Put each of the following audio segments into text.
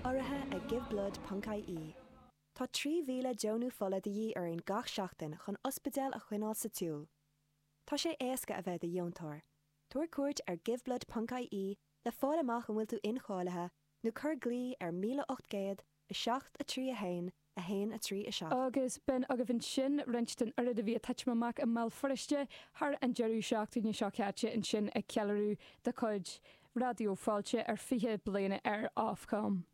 Urraithe ag Giveblood ponc IE, Tá 3,000 deonachán fola de dhíth orainn gach seachtain chun ospidéal a choinneáil sa tsiúl. Tá sé éasca a bheith i do dheontóir. Tabhair cuairt ar Giveblood ponc IE le fáil amach an bhfuil tú incháilithe nó cuir glao ar 1800 7 3 1 1, 3, 7. Agus b'in agaibh ansin roinnt den oiread a bhí ag titim amach i mBéal Feirste thar an deireadh seachtaine seo caite, ansin ag an cheiliúradh de chuid Raidió Fáilte ar 20 bliain ar Ofcom.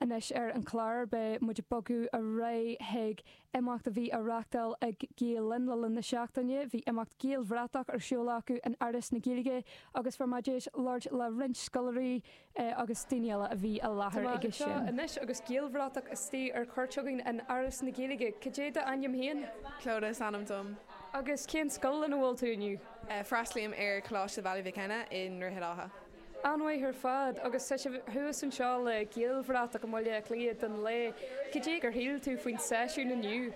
Anois ar an chlár beidh muid ag bogadh ar aghaidh chuig imeacht a bhí á reáchtáil ag Gael Linn le linn na seachtaine. Bhí imeacht Gaelbhratach ar siúl acu in Áras na Gaeilge agus fuair muid deis labhairt le roinnt scoláirí, é agus daoine eile a bhí i láthair aige. So anois agus Gaelbhratach istigh ar chuairt againn in Áras na Gaeilge. Cad é d'ainm féin? Clodagh is ainm dom. Agus cén scoil ina bhfuil tú inniu? Freastlaím ar Coláiste Bhaile Mhic Cionnaith i nDroichead Átha. An-mhaith ar fad. Agus tá sibh thuas anseo le Gaelbhratach i mBaile Átha Cliath don lae. Cad é gur shíl tú faoin seisiún inniu?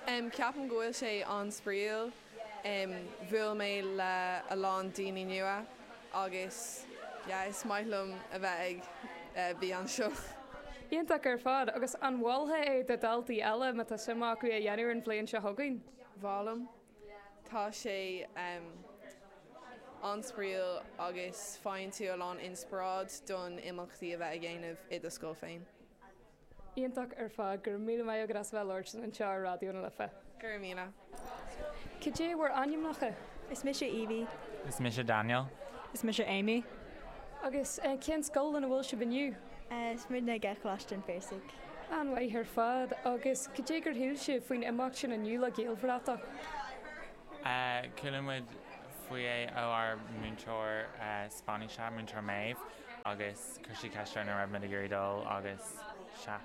Ceapaim go bhfuil sé an-spraíúil. Bhuail mé le a lán daoine nua agus yeah is maith liom a bheith ag beith anseo. Iontach ar fad, agus an mholfá é do daltaí eile má tá suim acu é a dhéanamh an bhliain seo chugainn? Mholaim. Tá sé an-spraíúil agus faigheann tú a lán inspioráid don imeachtaí a bheith á dhéanamh i do scoil féin. Iontach ar fad. Go raibh míle maith agat as a bheith labhairt anseo ar Raidió na Life. Go raibh míle. Cad é bhur ainmneacha? Is mise Evie. Is mise Daniel. Is mise Amy. Agus cén scoil ina bhfuil sibh inniu? Is muidne ag Coláiste an Phiarsaigh. An-mhaith ar fad. Agus cad é gur shíl sibh faoin imeacht sin inniu le Gaelbhratach? Chuala muid faoi é ó ár múinteoir Spáinnise, Múinteoir Méabh, agus. Chuir sí ceist orainn an raibh muid ag iarraidh dul agus sea.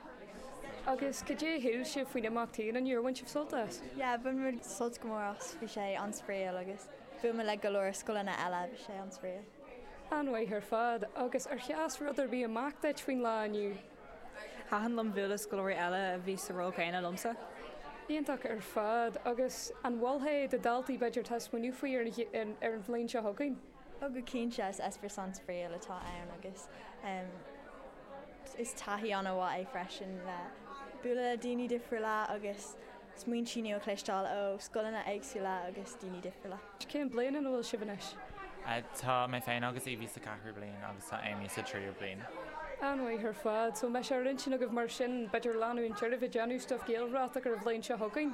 Agus cad é a shíl sibh faoin imeacht féin, an fíor gur bhain sibh sult as? Yeah, bhain muid sult go mór as, bhí sé an-spraíúil agus bhuail muid le go leor scoileanna eile, bhí sé an-spraíúil. An-mhaith ar fad, agus ar sheas rud ar bith amach duit faoin lá inniu? Thaitin liom bualadh le scoláirí eile a bhí sa ról céanna liomsa. Iontach ar fad, agus an mholfá é do daltaí b'fhéidir atá ag smaoineamh faoi ar an bhliain seo chugainn? Oh go cinnte, is eispéireas an-spraíúil atá ann agus is taithí an-mhaith é freisin le bualadh le daoine difriúla agus smaointe nua a chloisteáil ó scoileanna éagsúla agus daoine difriúla. Cén bliain ina bhfuil sibh anois? Tá mé féin agus Evie sa ceathrú bliain agus tá Amy sa tríú bliain. An-mhaith ar fad. So an mbeidh sé ar intinn agaibh mar sin b'fhéidir leanúint oraibh ag déanamh stuff Gaelbhratach ar an bhliain seo chugainn?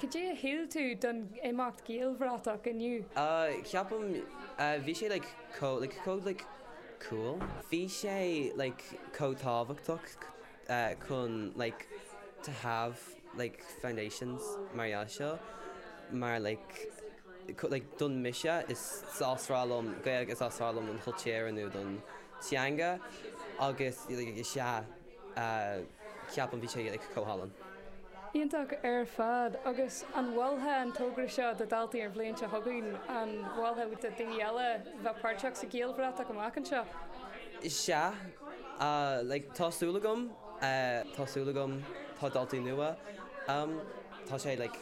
Cad é a shíl tú don imeacht Gaelbhratach inniu? Ceapaim bhí sé like chomh like chomh like cool. Bhí sé like chomh tábhachtach chun like to have like foundations mar gheall seo mar like like don mise is aoibhinn liom Gaeilge is aoibhinn liom don chultúr nó don teanga agus like is ea. Ceapaim bhí sé like chomh hálainn. Iontach ar fad. Agus an mholfá an togra seo do daltaí an bhliain seo chugainn? An mholfá do daoine eile bheith páirteach sa Ghaelbhratach amach anseo? Sea. Like tá súil agam. Tá súil agam. Tá daltaí nua. Tá sé like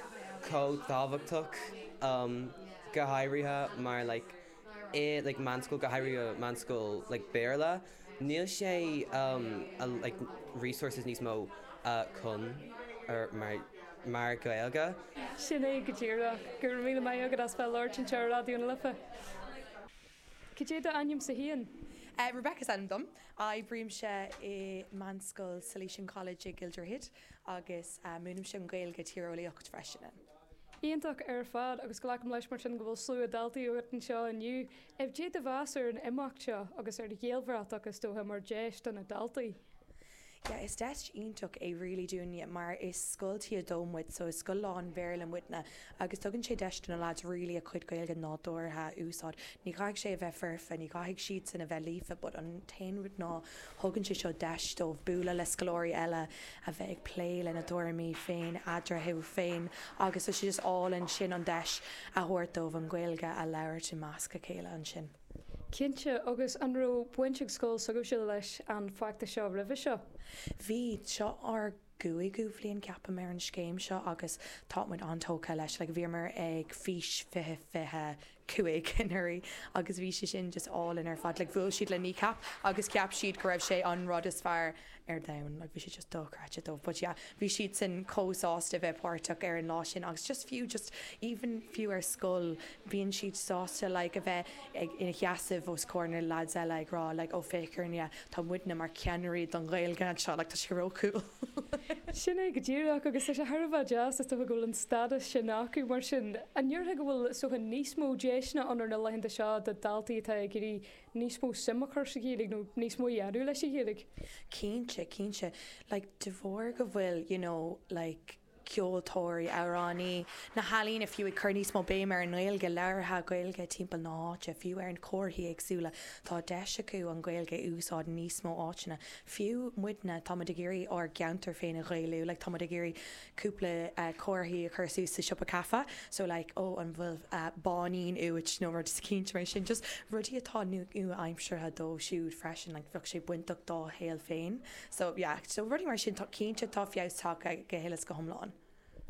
chomh tábhachtach go háirithe mar like. i like meánscoil go háirithe meánscoil like Béarla níl sé um like resources níos mó uh chun ar mar mar Gaeilge. Sin é go díreach. Go raibh míle maith agat as bheith ag labhairt anseo ar Raidió na Life. Cad é d'ainm sa? Rebecca is ainm dom. Oibrímse i meánscoil Salesian College i gCill Droichid agus múinimse Gaeilge agus Tíreolaíocht freisin. Iontach ar fad agus glacaim leis mar sin go bhfuil slua daltaí agat anseo inniu. Cad é do mheas ar an imeacht seo agus ar Ghaelbhratach is dócha mar dheis do na daltaí? Yeah is deis iontach é really dúinne mar is scoil T2 muid so is scoil lán Bhéarla muidne agus tugann sé deis do na lads really a cuid Gaeilge nádúrtha a úsáid. Ní chaithfidh sé a bheith foirfe, ní chaithfidh siadsan a bheith líofa but an t-aon rud ná, tugann sé seo deis dóibh bualadh le scoláirí eile, a bheith ag plé lena dtuairimí féin eatarthu féin agus tá sé just álainn sin an deis a thabhairt dóibh an Ghaeilge a labhairt i measc a chéile ansin. Cinnte, agus an raibh baint ag scoil s'agaibhse leis an bhfeachtas seo roimhe seo? Bhí, seo ár gcúigiú bhliain ceapaim ar an scéim seo agus tá muid an-tógtha leis. Like bhíomar ag Fís 20 25 anuraidh agus bhí sé sin just álainn ar fad. Like bhuail siad le Kneecap agus cheap siad go raibh sé an rud is fearr ar domhan. Like bhí sé just dochreidte dóibh but yeah bhí siadsan chomh sásta bheith páirteach ar an lá sin agus just fiú just even fiú ar scoil bíonn siad sásta like a bheith ag, ina sheasamh os comhair na lads eile ag rá like 'ó féach orainne, tá muidne mar cheannairí don Ghaeilge anseo' like tá sé ró-cool. Sin é go díreach agus tá sé thar a bheith deas, is dócha go bhfuil an stádas sin acu mar sin an ndéarfá go bhfuil is dócha níos mó deiseanna ann ar na laethanta seo do daltaí atá ag iarraidh níos mó suim a chur sa Ghaeilge nó níos mó a dhéanamh leis an Ghaeilge? Cinnte, cinnte. Like de bharr go bhfuil you know like. ceoltóirí, amhránaí, na healaíona fiú, ag cur níos mó béime ar an nGaeilge labhartha, Gaeilge timpeall na háite, fiú ar na comharthaí éagsúla, tá deis acu an Ghaeilge a úsáid in níos mó áiteanna. Fiú muidne, tá muid ag iarraidh ár gceantar féin a Ghaelú, like tá muid ag iarraidh cúpla comharthaí a chur suas sa siopa caife, so like oh an bhfuil báinín uait nó rudaí mar sin, just rudaí atá nua-aimseartha dóibh siúd freisin, like bheadh sé bainteach dá shaol féin. So yeah, so rudaí mar sin. Cinnte tá feabhas tagtha go huile is go hiomlán.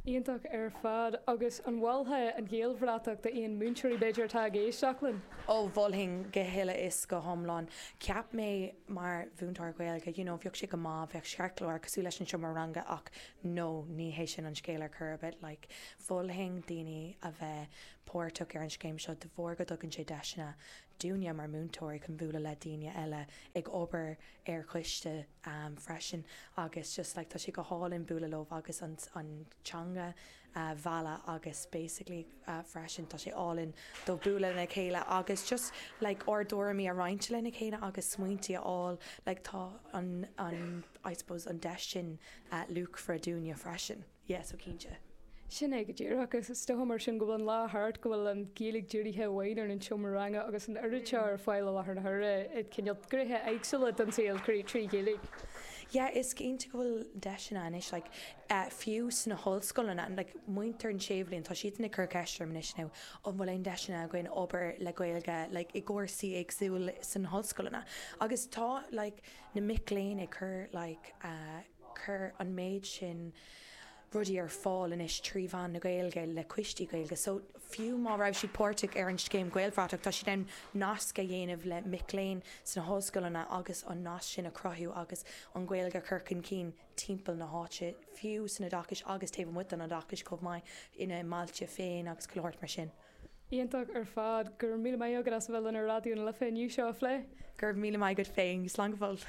Iontach ar fad. Agus an molfá an Ghaelbhratach d'aon múinteoirí, b'fhéidir, atá ag éisteacht linn? Ó, mholfainn go huile is go hiomlán. Cheap mé mar mhúinteoir Gaeilge, you know, bheadh sé go maith, bheadh cheartlár cosúil leis an seomra ranga ach no, ní hé sin an scéal ar chor ar bith. Like, mholfainn daoine a bheith páirteach ar an scéim seo de bharr go dtugann sé deiseanna dúinne mar mhúinteoirí chun bualadh le daoine eile ag obair ar choiste freisin agus just like tá sé go hálainn bualadh leo agus an an teanga a mhealladh agus basically freisin tá sé álainn dúinn bualadh lena chéile agus just like ár dtuairimí a roinnt lena chéile agus smaointe a fháil like tá an an I suppose an deis sin luachmhar dúinne freisin. Yeah so cinnte. Sin é go díreach. Is dócha mar sin go bhfuil an lá thart, go bhfuil an Ghaeilge dírithe amháin ar an seomra ranga agus an oiread seo ar fáil i láthair na huaire i gcineál gnéithe éagsúla den saol trí Ghaeilge. Yeah is cinnte go bhfuil deiseanna anois like fiú sna hollscoileanna like muintir an séú bliain tá siadsan ag cur ceist orm anois now an bhfuil aon deiseanna againn obair le Gaeilge like i gcúrsaí éagsúla sna hollscoileanna agus tá like na mic léinn ag cur like a Cur an méid sin rudaí ar fáil anois trí mheán na Gaeilge le coistí Gaeilge so fiú má raibh siad páirteach ar an scéim Gaelbhratach tá siad in ann nasc a dhéanamh le mic léinn sna hollscoileanna agus an nasc sin a chruthú agus an Ghaeilge a chur chun cinn timpeall na háite fiú san oideachas agus taobh amuigh den oideachas chomh maith ina mbailte féin agus chuile shórt mar sin. Iontach ar fad. Go raibh míle maith agat as a bheith linn ar Raidió na Life inniu le seo a phlé. Go raibh míle maith agat féin. Slán go fóill.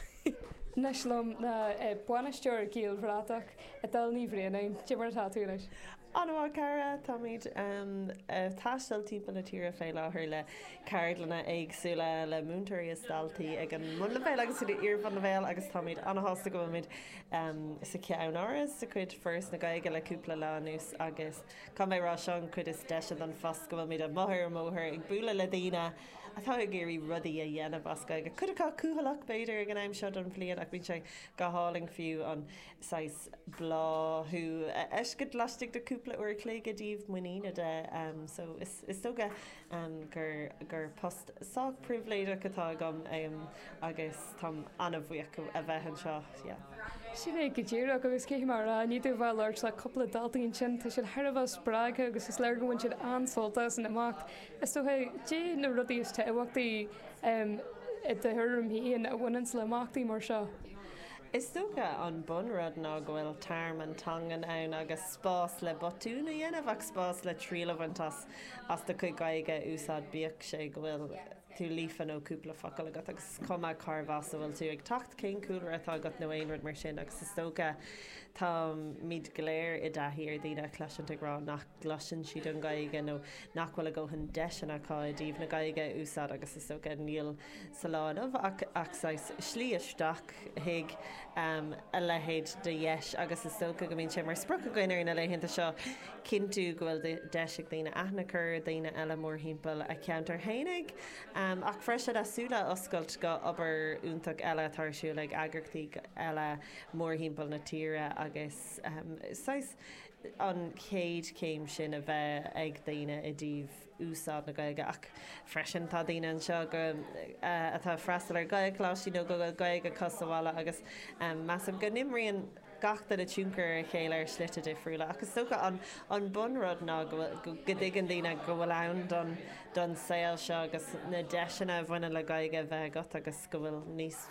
Anois liom ná é bainisteoir Gaelbhratach Edel Ní Bhraonáin. Cé mar atá tú anois? An-mhaith a chara. Táimid ag taisteal timpeall na tíre fé láthair le ceardlanna éagsúla le múinteoirí is daltaí ag an mbunleibhéal agus ag iar-bhunleibhéal agus táimid ana-shásta go bhfuilimid sa cheann áras de chuid Foras na Gaeilge le cúpla lá anuas agus Caithfidh mé a rá, sé an chuid is deise den phost go bhfuil muid amuigh ar an mbóthar ag bualadh le daoine atá ag iarraidh rudaí a dhéanamh as Gaeilge cuid acu cúthaileach b'fhéidir ag an am seo den bhliain ach bíonn sé go hálainn fiú an saghas bláthú a fheiscint laistigh de chúpla uair an chloig i dtaobh muiníne de so is dócha gur post sách pribhléideach atá agam agus táim an-bhuíoch a bheith anseo. Sin é go díreach, agus caithfidh mé a rá, i ndiaidh a bheith ag labhairt le cúpla daltaí ansin, tá siad thar a bheith spreagtha agus is léir gur bhain siad an-sult as an imeacht. Is dócha, caidé na rudaí is tábhachtaí i do thuairim féin a bhaineanns le imeachtaí mar seo? Is dócha an bun rud ná go bhfuil tearmann teangan ann agus spás le botúin a dhéanamh ach spás le triail a bhaint as. do chuid Gaeilge a úsáid, bíodh sé go bhfuil tú líofa nó cúpla focal agat agus is cuma cárbh as a bhfuil tú ag teacht, cén cúlra atá agat nó aon rud mar sin agus is dócha táimid go léir i dtaithí ar dhaoine a chloisint ag rá nach gcloiseann siad an Ghaeilge nó nach bhfuil a ndóthain deiseanna acu i dtaobh na Gaeilge a úsáid agus is dócha níl sa lá inniu ach saghas slí isteach chuig a leithéid de dheis agus is dócha go mbíonn sé mar sprioc againn ar na laethanta seo cinntiú go bhfuil deis ag daoine aithne a chur ar dhaoine eile mórthimpeall a cheantair fhéinig ach freisin a súile a oscailt go obair iontach eile atá ar siúl ag eagraíochtaí eile mórthimpeall na tíre agus saghas an chéad chéim sin a bheith ag daoine i dtaobh úsáid na Gaeilge ach freisin tá daoine anseo go atá ag freastal ar Ghaelcholáistí nó go bhfuil Gaeilge acu sa bhaile agus measaim go n-imríonn gach duine tionchar ar a chéile ar shlite difriúla ach is dócha an an bun rud ná go bhfuil go dtuigeann daoine go bhfuil ann don don saol seo agus na deiseanna a bhaineann le Gaeilge bheith agat agus go bhfuil níos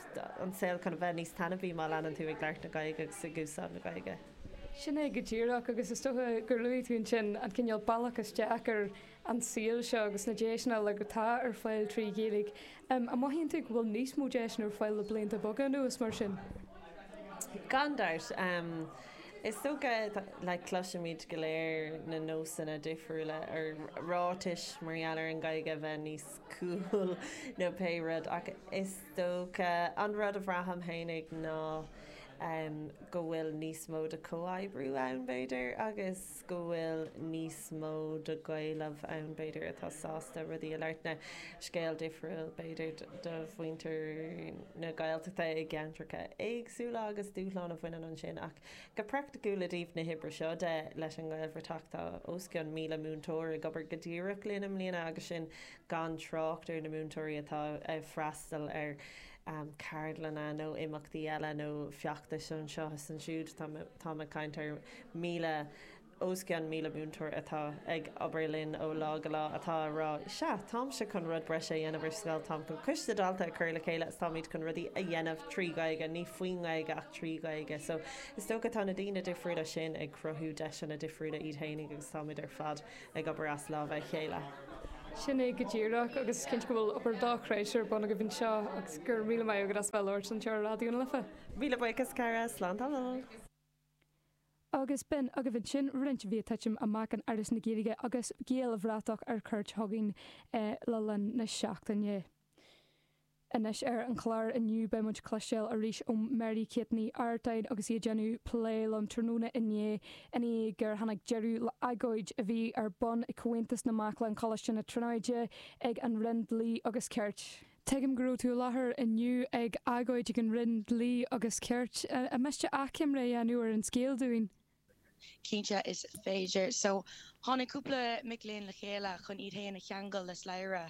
an saol chun bheith níos taitneamhaí má leanann tú ag labhairt na Gaeilge agus ag úsáid na Gaeilge. Sin é go díreach, agus is dócha gur luaigh tú ansin an cineál bealach isteach ar an saol seo agus na deiseanna uilig atá ar fáil trí Ghaeilge. An mothaíonn tú go bhfuil níos mó deiseanna ar fáil le blianta beaga anuas mar sin? Gan dabht. Is dócha, like, cloisimid go léir na nósanna difriúla nó ráitis mar gheall ar an Ghaeilge bheith níos cool nó pé rud ach is dócha. An rud a bhraithim fhéinig ná go bhfuil níos mó de chomhoibriú ann, b'fhéidir, agus go bhfuil níos mó de Ghaeil amuigh ann, b'fhéidir, atá sásta rudaí a lárnú. Scéal difriúil, b'fhéidir, do mhuintir na Gaeltachta i gceantracha éagsúla agus dúshláin a bhaineann ansin. Ach go praicticiúil i dtaobh na hoibre seo de leis an nGaelbhratach, tá os cionn míle múinteoir ag obair go díreach linn i mbliana agus sin gan trácht ar na múinteoirí atá ag freastal ar cheardlanna nó imeachtaí eile nó feachtais anseo is ansiúd. Táim ag caint ar míle, os cionn míle múinteoir atá ag obair linn ó lá go lá atá ag rá, 'sea, táimse chun rud breise a dhéanamh ar scoil, táim chun coiste daltaí a chur le chéile agus táimid chun rudaí a dhéanamh trí Ghaeilge, ní faoin nGaeilge ach trí Ghaeilge. So is dócha tá na daoine difriúla sin ag cruthú deiseanna difriúla iad fhéinig agus táimid ar fad ag obair as lámha a chéile. Sin é go díreach agus is cinnte go bhfuil obair dhá thréis ar bun agaibh anseo agus go raibh míle maith agat as bheith labhairt anseo ar Raidió na Life. Míle buíochas cara, slán tamall. Agus b'in agaibh ansin roinnt mhaith ag titim amach in Áras na Gaeilge agus Gaelbhratach ar cuairt chugainn le linn na seachtaine. Anois ar an chlár inniu beidh muid ag cloisteáil arís ó Mary Kate Ní Artáin agus í ag déanamh plé liom tráthnóna inné i ndiaidh gur tháinig deireadh le agóid a bhí ar bun ag Aontas na Mac Léinn Choláiste na Tríonóide ag an Roinn Dlí agus Cirt. Tuigim go raibh tú i láthair inniu ag agóid ag an Roinn Dlí agus Cirt. An miste achoimre a dhéanamh ar an scéal dúinn? Cinnte is féidir. So, tháinig cúpla mic léinn le chéile chun iad féin a cheangal le slabhra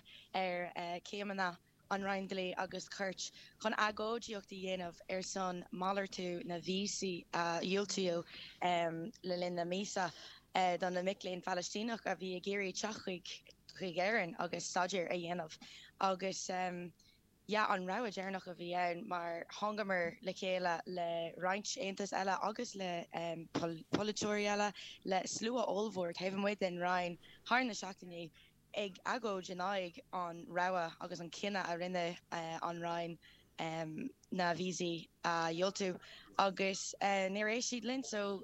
ar chéimeanna an Roinn Dlí agus Cirt chun agóidíocht a dhéanamh ar son malartú na víosaí a diúltaíodh le linn na míosa do na mic léinn Phalaistíneach a bhí ag iarraidh teacht chuig Éirinn agus staidéar a dhéanamh agus Yeah, an rogha deireanach a bhí ann mar thángamar le chéile le roinnt aontais eile agus le polaiteoirí eile, le slua ollmhór taobh amuigh den Roinn thar na seachtainí, ag agóid in aghaidh an rogha agus an cinneadh a rinne an Roinn na víosaí a dhiúltú agus níor éist siad linn so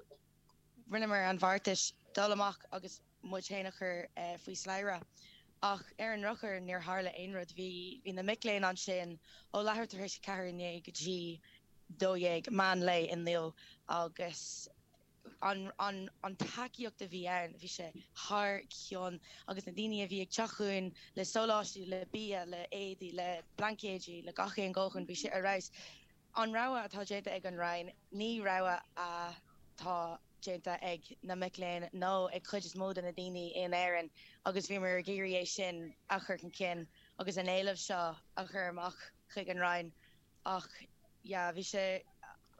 rinneamar an beartas dul amach agus muid féin a chur faoi slabhra. Ach ar an ndrochuair níor tharla aon rud. Bhí, bhí na mic léinn ansin ó leathuair tar éis a ceathair inné go dtí dó dhéag meán lae inniu agus an tacaíocht a bhí ann, bhí sé thar cionn agus na daoine a bhí ag teacht chugainn le sóláistí, le bia, le éadaí, le blaincéidí, le deochanna, bhí sé ar fheabhas. An rogha atá déanta ag an Roinn ní rogha atá. déanta ag na mic léinn nó ag cuid is mó de na daoine in Éirinn agus bhíomar ag iarraidh é sin a chur chun cinn agus an éileamh seo a chur amach chuig an Roinn ach yeah bhí sé,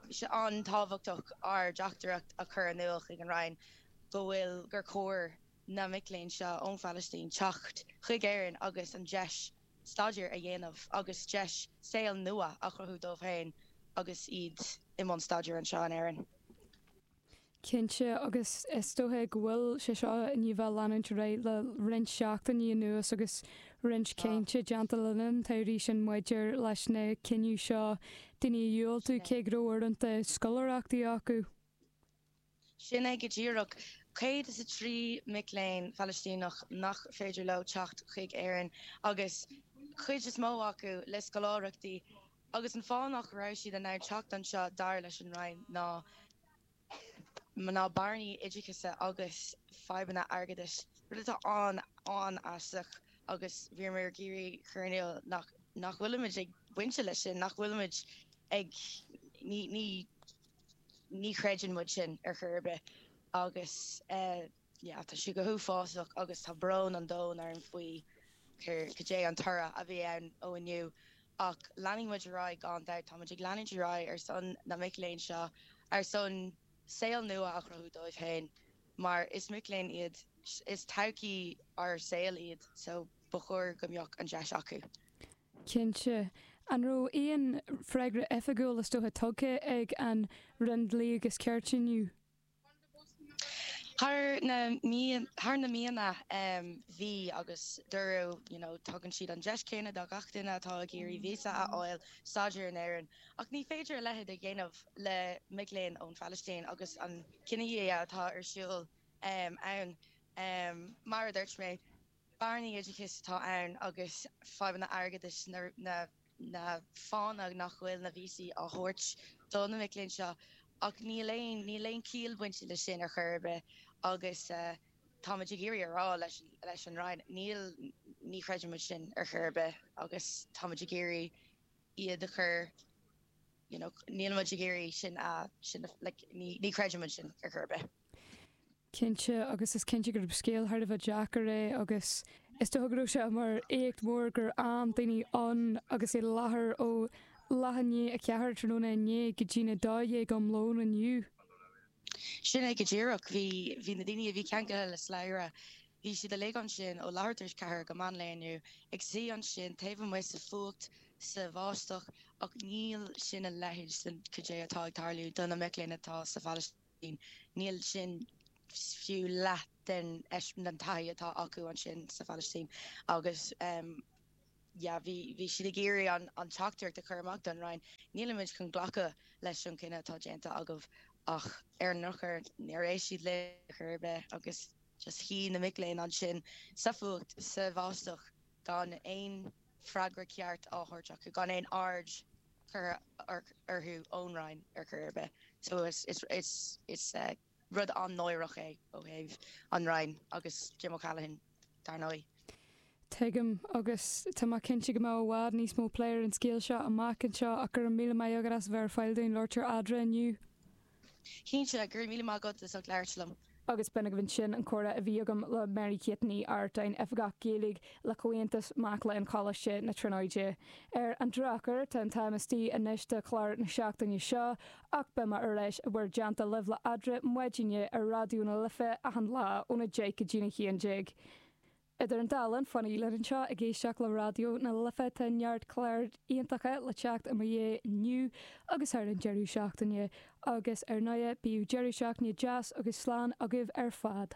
bhí sé an-tábhachtach ár dteachtaireacht a chur in iúl chuig an Roinn go bhfuil gur chóir na mic léinn seo ón Phalaistín teacht chuig Éirinn agus an deis a staidéar a dhéanamh agus deis saoil nua a chruthú dóibh féin agus iad i mbun staidéir anseo in Éirinn. Cinnte, agus is dócha go bhfuil sé seo i ndiaidh bheith ag leanúint ar aghaidh le roinnt seachtainí anuas agus roinnt cainte déanta le linn an tsamhraidh ansin maidir leis an cinneadh seo daoine a dhiúltú cé go raibh uaireanta scoláireachtaí acu. Sin é go díreach. Céad is a trí mic léinn Phalaistíneach nach féidir leo teacht chuig Éirinn, agus cuid is mó acu le scoláireachtaí, agus an fáth nach raibh siad in ann teacht anseo dar leis an Roinn ná bearnaí oideachais agus fadhbanna airgeadais, rud atá an-aisteach agus bímid ag iarraidh cur in iúl nach bhfuilimid ag baint leis sin, nach bhfuilimid ag, ní, ní. ní chreideann muid sin ar chor ar bith agus tá sé go huafásach agus tá brón an domhain orm faoi cad é an toradh a bhí ann ó inniu ach leanfaidh muid ar aghaidh gan dabht, táimid ag leanúint ar aghaidh ar son na mic léinn seo, ar son saol nua a chruthú dóibh féin mar is mic léinn iad, is todhchaí ár saol iad so ba chóir go mbeadh an deis acu. Cinnte. An raibh aon freagra oifigiúil is dócha tugtha ag an Roinn Dlí agus Cirt inniu? Thar na thar na míonna bhí agus dúradh you know tugann siad an deis chéanna do gach duine atá ag iarraidh víosa a fháil staidéar in Éirinn ach ní féidir a leithéid a dhéanamh le mic léinn ón Phalaistín agus an cinedhíothú atá ar siúl ann mar a dúirt mé. bearnaí oideachais atá ann agus fadhbanna airgeadais na fáthanna nach bhfuil na víosaí á thabhairt do na mic léinn seo ach níl aon níl aon chiall bainte leis sin ar chor ar bith agus táimid ag iarraidh a rá leis leis an Roinn níl ní chreidimid sin ar chor ar bith agus táimid ag iarraidh iad a chur you know nílimid ag iarraidh sin a sin a like ní ní chreidimid sin ar chor ar bith. Cinnte, agus is cinnte gurb scéal thar a bheith deacair é agus is dócha go raibh sé mar éacht mór gur fhan daoine ann agus i láthair ó leathuair i ndiaidh a ceathair tráthnóna inné go dtí a dó dhéag um lón inniu. Sin é go díreach. Bhí, bhí na daoine a bhí ceangailthe le slabhra, bhí siad uilig ansin ó leathuair tar éis ceathair go meán lae inniu, ag suí ansin taobh amuigh sa fuacht, sa bháisteach ach níl sin a leithéid den, goidé atá ag tarlú do na mic léinn atá sa Phalaistín. Níl sin fiú leath den taithí atá acu ansin sa Phalaistín agus bhí siad ag iarraidh an teachtaireacht a chur amach don Roinn, nílimid chun glacadh leis an gcinneadh atá déanta agaibh ach ar an ndrochuair níor éist siad linn ar chor ar bith agus just shuigh na mic léinn ansin sa bhfuacht, sa bháisteach gan aon freagra ceart á thabhairt acu, gan aon aird. curtha orthu ón Roinn ar chor ar bith. So is rud an-náireach é ó thaobh an Roinn agus Jim O'Callaghan dar ndóigh. Tuigim agus tá mé cinnte go mbeidh i bhfad níos mó plé ar an scéal seo amach anseo ach go raibh míle maith agat as a bheith ar fáil dúinn labhairt ar Adhmhaidin inniu. Cinnte, go raibh míle maith agat as ucht labhairt liom. Agus b'in agaibh ansin an comhrá a bhí agam le Mary-Kate Ní Artáin, Oifigeach Gaeilge le Comhaontas Mac Léinn Choláiste na Tríonóide. Ar an drochuair, tá an t-am istigh anois do chlár na seachtaine seo, ach beimid ar ais in bhur dteannta libh le Adhradh Maidine ar Raidió na Life achan lá óna deich go dtí a haon déag. Idir an dá linn, fanaigí linn anseo ag éisteacht le Raidió na Life. Tá neart cláir iontacha le teacht i mo dhiaidh inniu agus thar an deireadh seachtaine. Agus ar ndóigh, bíodh deireadh seachtaine deas agus slán agaibh ar fad.